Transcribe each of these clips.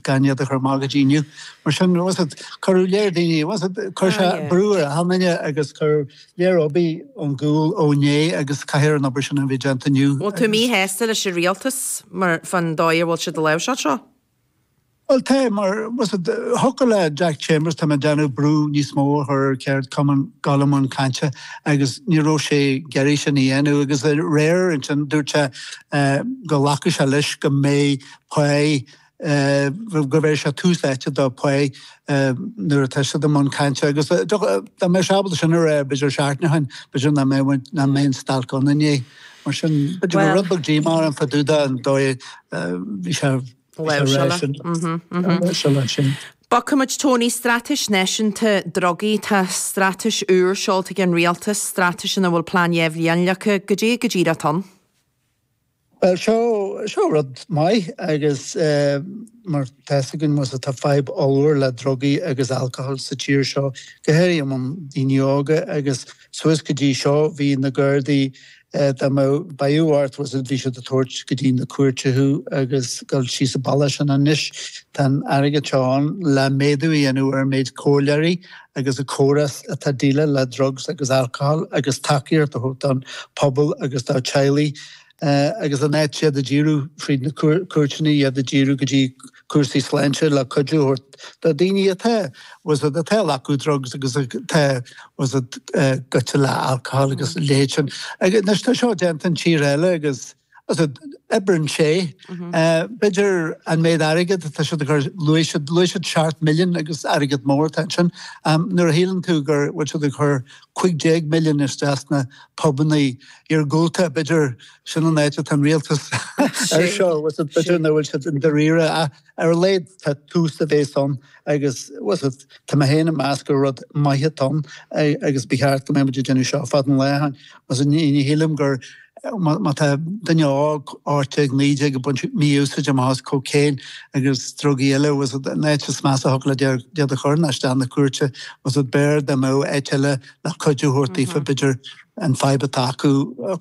gan iad a chur amach go dtí inniu. Mar sin, fhios agat, cuireadh lear daoine, fhios agat, chuir sé brú ar achan nduine agus cuireadh lear oibre ar gcúl ó inné agus caithfear an obair sin a bheith déanta inniu agus. Bhfuil tú míshásta leis an rialtas mar, fán dóigh a bhfuil siad ag láimhseáil seo? Bhuel tá, mar, fhios agat, thiocfadh le Jack Chambers tá mé ag déanamh brú níos mó a chur ar ceardchumainn gabháil i mbun cainte agus ní raibh sé ag iarraidh sin a dhéanamh agus aréir ansin dúirt sé go nglacfadh sé leis go mbeidh pá gurb é seo tús áite do phá nuair atá siad i mbun cainte agus dá mbeadh sé ábalta sin a rá b'fhéidir seachtain ó shin, b'fhéidir nach mbeadh nach mbeadh an stailc ann inné. Mar sin b'fhéidir go raibh rud beag díomá ann fá dtaobh den dóigh a bhí sé. Bogfaimid Tony straitéis náisiúnta drugaí. Tá straitéis úr seolta ag an rialtas, straitéis ina bhfuil plean dhá bhliain leagtha cad é, cad é atá ann. Bhuel, seo, seo rud maith agus mar tá fhios againn fhios agat tá fadhb ollmhór le drugaí agus alcohol sa tír seo, go háirithe i mbun daoine óga agus suas go dtí seo bhí na gardaí, dá mbeadh, beirthe ort fhios agat bhí siad ag tabhairt go dtí na cúirte thú agus dul síos an bealach sin anois tá an airgead seo ann le méadú a dhéanamh ar an méid comhairleoirí a agus an córas atá ag déileáil le drugs agus alcohol agus tacaíocht a thabhairt don pobal agus dá teaghlaigh agus in áit iad a dhíriú fríd na cúirteanna iad a dhíriú go dtí cúrsaí sláinte le cuidiú a thabhairt do daoine atá fhios agat atá ag glacadh drugs agus atá fhios agat goite le alcohol agus a leithéid agus tá seo déanta i dtíortha eile agus Oibreann sé. B'fhéidir an méid airgid atá siad ag cur, luaigh siad, luaigh siad seacht million agus airgead mór atá ansin. Nuair a shíleann tú go bhfuil siad ag cur cúig déag million isteach sna pubanna iargúlta, b'fhéidir sin an áit atá an rialtas air seo, b'fhéidir, nach bhfuil siad i ndáiríre. Ar a laghad tá tús a bhéas ann agus tá mé féin ag meas gur rud maith atá ann agus ba cheart go mbeadh muid ag déanamh seo fada an lá ó shin. Ní shílim gur, má tá duine óg 18, 19 ag baint mí-úsáid amach as cocaine agus drugaí eile, an áit is measa a thiocfadh leat iad a chur ná isteach na cúirte. B'fhearr dá mbeadh áit eile le cuidiú a thabhairt daofa b'fhéidir. an fadhb atá acu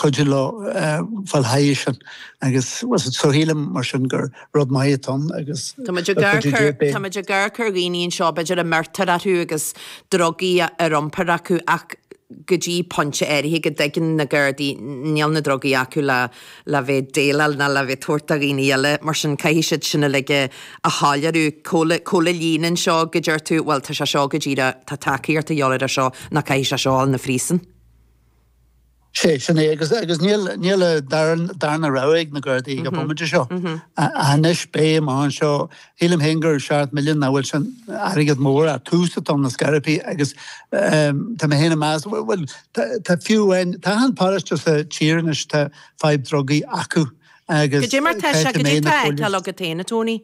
cuidiú leo fáil thairis sin agus so shílim mar sin gur rud maith atá ann agus le cuidiú Dé beidh. Táimid ag amharc ar dhaoine anseo b'fhéidir a mbeirtear orthu agus drugaí ar iompar acu ach go dtí pointe áirithe go dtuigeann na Gardaí níl na drugaí acu le le bheith déileáil ná le bheith tabhairt do dhaoine eile, mar sin caithfidh siad sin uilig a shoiléiriú. Cá bhfuil, cá bhfuil an líne anseo go deir tú, bhuel tá sé seo go díreach, tá tacaíocht a dhíobháil air seo, nó caithfidh sé seo a dhul na phríosúin? Sé, sin é agus, agus níl, níl an darn, darna rogha ag na Gardaí ag an bhomaite seo. Anois béim anseo Shílim féin gur seacht milliún nach bhfuil sin airgead mór ach tús atá ann na scairipí agus tá mé féin ag meas, bhuel tá fiú amháin, tá achan páráiste sa tír anois tá fadhb drugaí acu agus creidfidh mé na póilíní.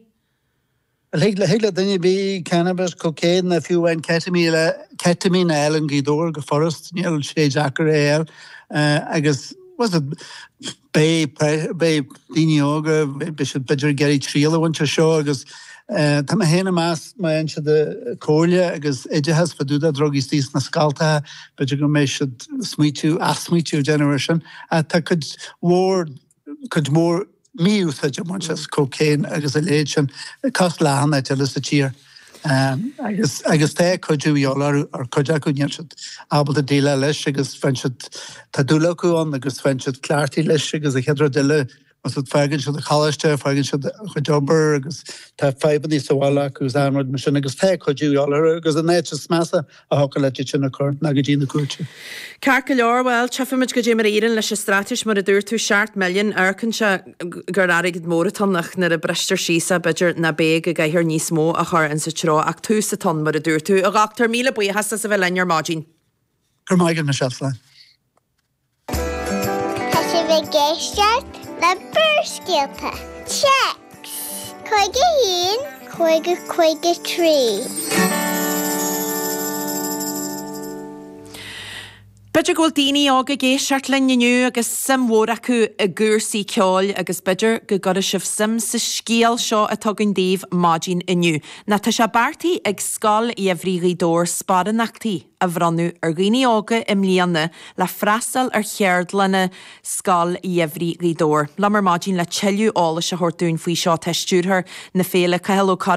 Thig le duine ar bith cannabis, cocaine nó fiú amháin ketamine a fháil in Gaoth Dobhair go furast, níl sé deacair é a fháil agus, Beidh daoine óga, beidh siad b'fhéidir ag iarraidh triail a bhaint as seo agus tá mé féin ag meas, má fhaigheann siad comhairle agus oideachas fá dtaobh de drugaí sna scoltacha, b'fhéidir go mbeidh siad smaoitiú, athsmaoitiú a dhéanamh air sin. Ach tá cuid mhór, cuid mhór mí-úsáid á baint as cocaine agus a leithéid sin, cosúil le achan áit eile sa tír. agus tá cuidiú de dhíobháil ar chuid acu, níl siad ábalta déileáil leis agus faigheann siad, tá dúil acu ann agus faigheann siad cleachtaithe leis agus an chéad rud eile más rud, fágann siad an choláiste, fágann siad a gcuid obair agus tá fadhbanna sa bhaile acu agus rudaí mar sin agus tá cuidiú de dhíobháil orthu agus an áit is measa a thiocfadh leat duine a chur ná go dtí na cúirte. Ceart go leor, bhuel, tchífimid caidé mar a éiríonn leis an straitéis mar a dúirt tú, seacht milliún, amharcann sé gur airgead mór atá ann ach nuair a bristear síos é b'fhéidir go mbeidh gá le níos mó a chur ins an treo ach tús atá ann mar a dúirt tú. A dhochtúir, míle buíochas as a bheith linn ar maidin. Go raibh maith agat, Michelle slán. Tá sibh ag éisteacht le Barrscéalta, Téacs, 51, 50, 53. B'fhéidir go bhfuil daoine óga ag éisteacht linn inniu agus suim mhór acu i gcúrsaí ceoil agus b'fhéidir go gcuirfidh sibh suim sa scéal seo atá againn daoibh maidin inniu. Nó tá sé beartaithe ag Scoil Gheimhridh Ghaoth Dobhair sparánachtaí. a bhronnadh ar dhaoine óga i mbliana le freastal ar cheardlanna Scoil Gheimhridh Ghaoth Dobhair. Liom ar maidin le tuilleadh eolais a thabhairt dúinn faoi seo tá Stiúrthóir na Féile, Cathal Ó Gallchóir.